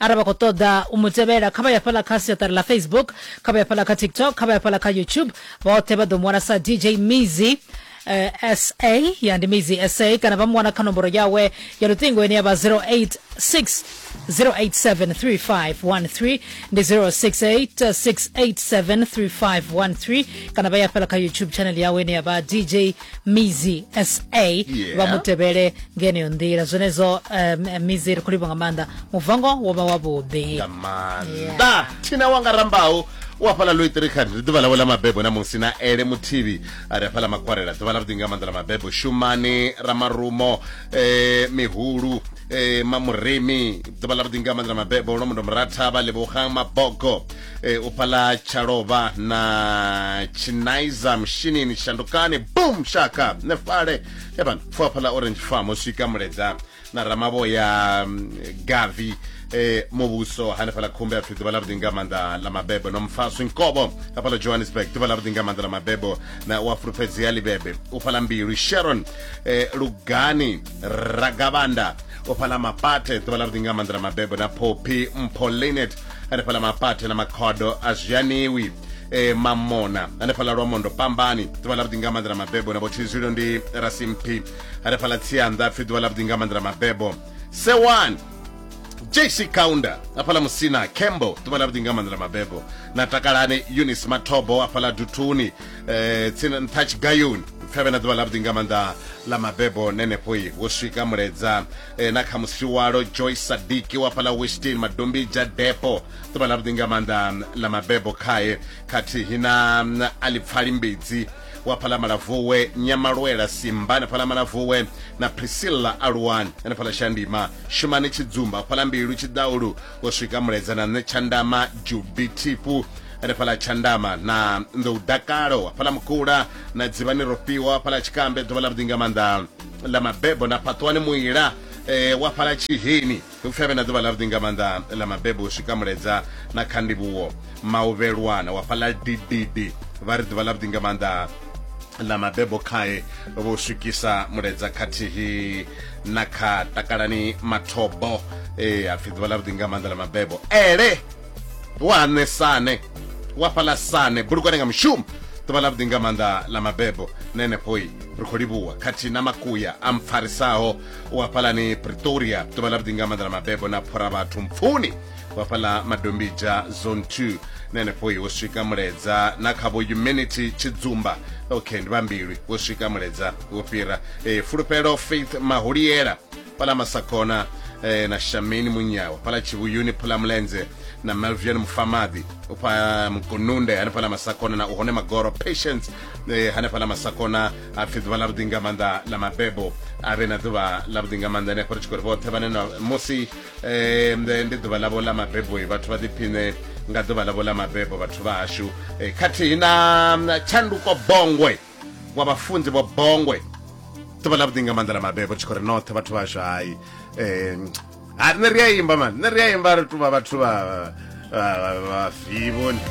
arali vha khou ṱoḓa u mu tevhela kha vha ya fhaḽa kha siaṱari ḽa facebook kha vha ya fhaḽa kha tiktok kha vha ya fhaḽa kha youtube vhoṱhe vha ḓo mu wana sa dj mizi eh, sa ya ndi mizi sa kana vha mu wana kha nomboro yawe ya luṱingo ine ya vha 086 087351 ndi 0686873513 kana vha ya fela kha youtube channel yawe ine ya vha dj mizi sa Yeah. vha mu tevhele nga yeneyo nḓila zwenezwo um, mizi ri khou livha nga maanḓa muvango wo vha wavhuḓi nga maanḓa thina wanga rambaho u hafhaḽa loitirikhan ndi ḓuvha ḽawe ḽa mabebo na musi na ele muthivhi a ri hafhaḽa makwarela ḓuvha ḽa vhuḓi nga maanḓa ḽa mabebo shumani ramarumo eh, mihulu eh, mamurimi ḓuvha ḽa vhuḓi nga maanḓa ḽa mabebo lomundo muratha vha lebogang mabogo e, u pfala tshalova na chinaiza mushinini shandukani bum shaka ne fale evan pfuwa pfala orange farm u swika muledza na ramavhoya mm, gavi e, muvhuso hanefhala khumbe ya pfi ḓuvha ḽa vhuḓi nga maanḓa ḽa mabebo no mfaswi nkobo hafhala johannesburg ḓuvha ḽa vhuḓi nga maanḓa ḽa mabebo na u a fulufhedzea libebe u fhala mbilu sharon e, lugani ragavanda u fhala mapate ḓuvha ḽa vhuḓi nga maanḓa ḽa mabebo na phophi mpho linet hanefhaḽa mapate na makhodo a zwi aniwi e, mamona hanefhaḽa lwa mondo pambani ḓuvha ḽa vhuḓi nga maanḓa na mabebo na vhotshizwilo ndi rasimphi hanefhaḽa tsianda pfi ḓuvha ḽa vhuḓi nga maanḓa na mabebo sewani jc counter afhala musina cambo ḓuvha ḽa vhuḓi nga maanḓa na mabebo na takalane unis mathobo afhala duthuni eh, tsini nṱha tshigayoni pfevhe na ḓuvha ḽa vhuḓi nga maanḓa ḽa mabebo nenefhoi wo swika muledza e, na kha musiwalo joy sadiki wa fhala westin madombija depo ḓuvha ḽa vhuḓi nga maanḓa ḽa mabebo khae khathihi na mm, alipfali mbidzi wa fhala malavuwe nyamalwela simba na fhala malavuwe na priscilla aluwani na fhala shandima shumani tshidzumba fhala mbilu tshidaulu u swika muledza na nṋe tshandama jubi thipu ri fhala tshandama na nḓou dakalo wa fhala mukula na dzivhani rofhiwa wa fhala tshikambe ḓuvha ḽa vhuḓi nga maanḓa ḽa mabebo na phaṱwani muila eh, wa fhala tshiheni upfi avhe na ḓuvha ḽavhuḓi nga maanḓa ḽa mabebo u swika muledza na kha ndivhuwo mauvhelwana wa fhala dididi vha ri ḓuvha ḽavhuḓi nga maanḓa ḽa mabebo khae vho swikisa muledza khathihi na kha takalani mathobo e eh, hapfi ḓuvha ḽavhuḓi nga maanḓa ḽa mabebo ele waṋe sane wa fhaḽa sane bulukwane nga mushumo ḓuvha ḽa vhuḓi nga maanḓa ḽa mabebo na henefhoi ri khou livhuwa khathihi na makuya a mpfarisaho u hafhalani pretoria ḓuvha ḽa vhuḓi nga maanḓa ḽa mabebo na phora vhathu mpfuni u hafhaḽa madombija zone 2 na henefhoi wo swika muledza na kha vho humanity tshidzumba okay ndi vhambilwi wo swika muledza wo fhira e, fulufhelo faith maholiela pala masakona eh, na shamini munyawa pala chivuyuni phala mulenze na melvian mufamadi upha mkununde hane phala masakona na uhone magoro patience eh, hane phala masakona apfi ḓuvha ḽa vhuḓi nga maanḓa ḽa mabebo a vhe na ḓuvha ḽa vhuḓi nga maanḓa ane ri tshi khou ri vhoṱhe vhane na musi eh, ndi ndi ḓuvha ḽavho ḽa mabebo eh, vhathu vha ḓiphiṋe nga ḓuvha ḽavho ḽa mabebo vhathu vha hashu eh, khathihi na na tshanduko bongwe wa vhafunzi vho bongwe ḓuvha ḽa vhuḓi nga maanḓa ḽa mabebo tshi khou ri noṱhe vhathu vhashu hayi um ha nṋe ri a imba mani nṋe ri a imba ri tuvha vhathu vha vhafivoni